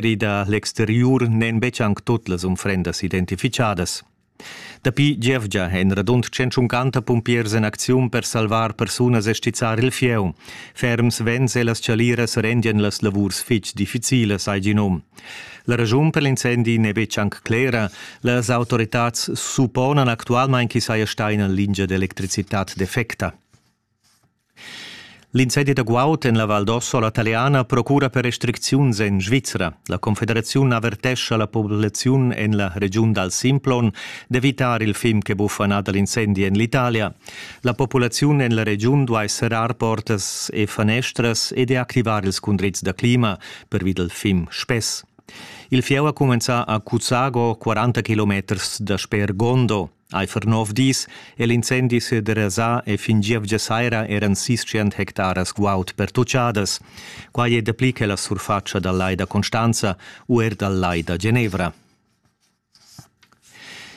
ri da l'exteriur n'èn betg anc tut las unfrendas identifichadas. Dapi gievgia èn radund 150 pumpiers en acziun per salvar persunas e stizzar il fieu. Ferms vents e las chaliras rendian las lavurs fitg difficilas, hai gì num. La ragiun per l'incendi n'è betg anc clera. Las autoritads supponan actualmain ch'i saja stà ina lingia d'electricitad defecta. L'incendie da guaud en la Val d'Ossola taliana procura per restricziuns en Svizra. La Confederaziun avertescha la populaziun en la regiun dal Simplon d'evitar il film che buffa nà dal incendi en l'Italia. La populaziun en la regiun duai serrar portas e fanestras e deactivar ils cundrids da clima, pervi dal film spess. Il fieu ha cumenzà a Cuzago, 40 km dasper Gondo. Eifer nov dis è l'incendi sederasà e fin gievgia saira eran sis tschient hectaras guaud pertuchadas. Quai è dapli che la surfatscha dal lai da Constanza u er dal lai da Genevra.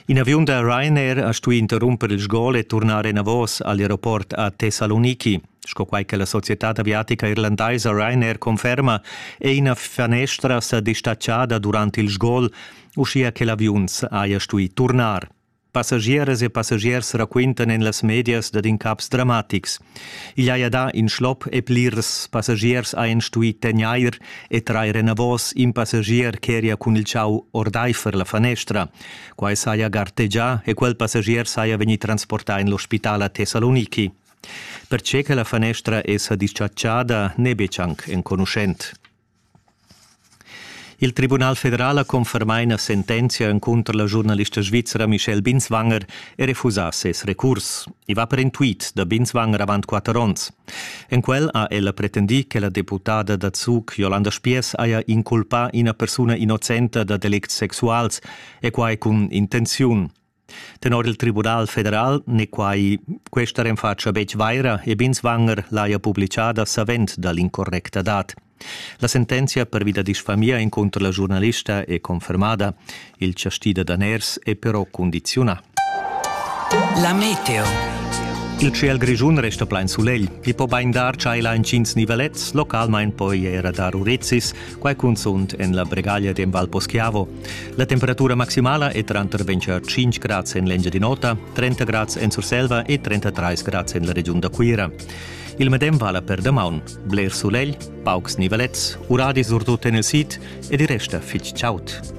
In aviun da Ryanair ha stuì interrumper il sgol e turnar enavos al aeroport a Thessaloniki. Sco quai che la societad aviatica irlandaisa Ryanair conferma, è ina fanestra sa distatschada durant il sgol uschia che l'aviuns haja stuì turnar. Passagieras e passagiers raquintan en las medias dad incaps dramatics. Igl haja dà in schlop e plirs passagiers hajan stuì tegnair e trair enavos in passagier ch'eria cun il chau ordaifer la fanestra. Quai saja gartegià e quel passagier saja vegnì transportà en l'ospital a Thessaloniki. Pertge che la fanestra è sa dischatschada n'è betg anc enconuschent. Il Tribunal federal ha confermà ina sentenzia encunter la giurnalista svizra Michelle Binswanger e refusà ses recurs. I va per in tweet da Binswanger avant quatter onns. En quel ha ella pretendì che la deputada da Zug Jolanda Spiess haja inculpà ina persuna innocenta dad delicts sexuals e quai cun intenziun. Tenor il Tribunal federal n'è quai questa renfatscha betg vaira e Binswanger l'haja publitgada savend da l'incorrecta dat. La sentenzia pervi da disfamia encunter la giurnalista è confermada. Il chastì da daners è però condiziunà. La meteo. Il ciel grischun resta plain sulegl. I po bain dar tschailar intgins nivelets, localmain poi era dar urezis, Quai cunzunt en la bregaglia d'en Val Poschiavo. La temperatura maximala è tranter 25 grads en l'Engiadin'Ota, 30 grads en Surselva e 33 grads en la regiun da Cuira. Il medem vala per damaun. Bler sulegl, paucs nivelets, uradi surtut en il sid ed il resta fitg chaud.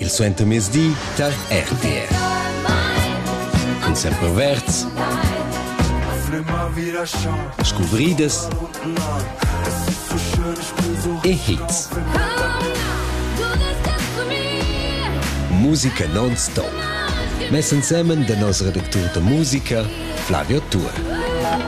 Il suentermezdi tar RTR. Cun semperverds, scuvridas e hits. Musica non-stop. Mess ensemen da nos redactur da musica Flavio Tour.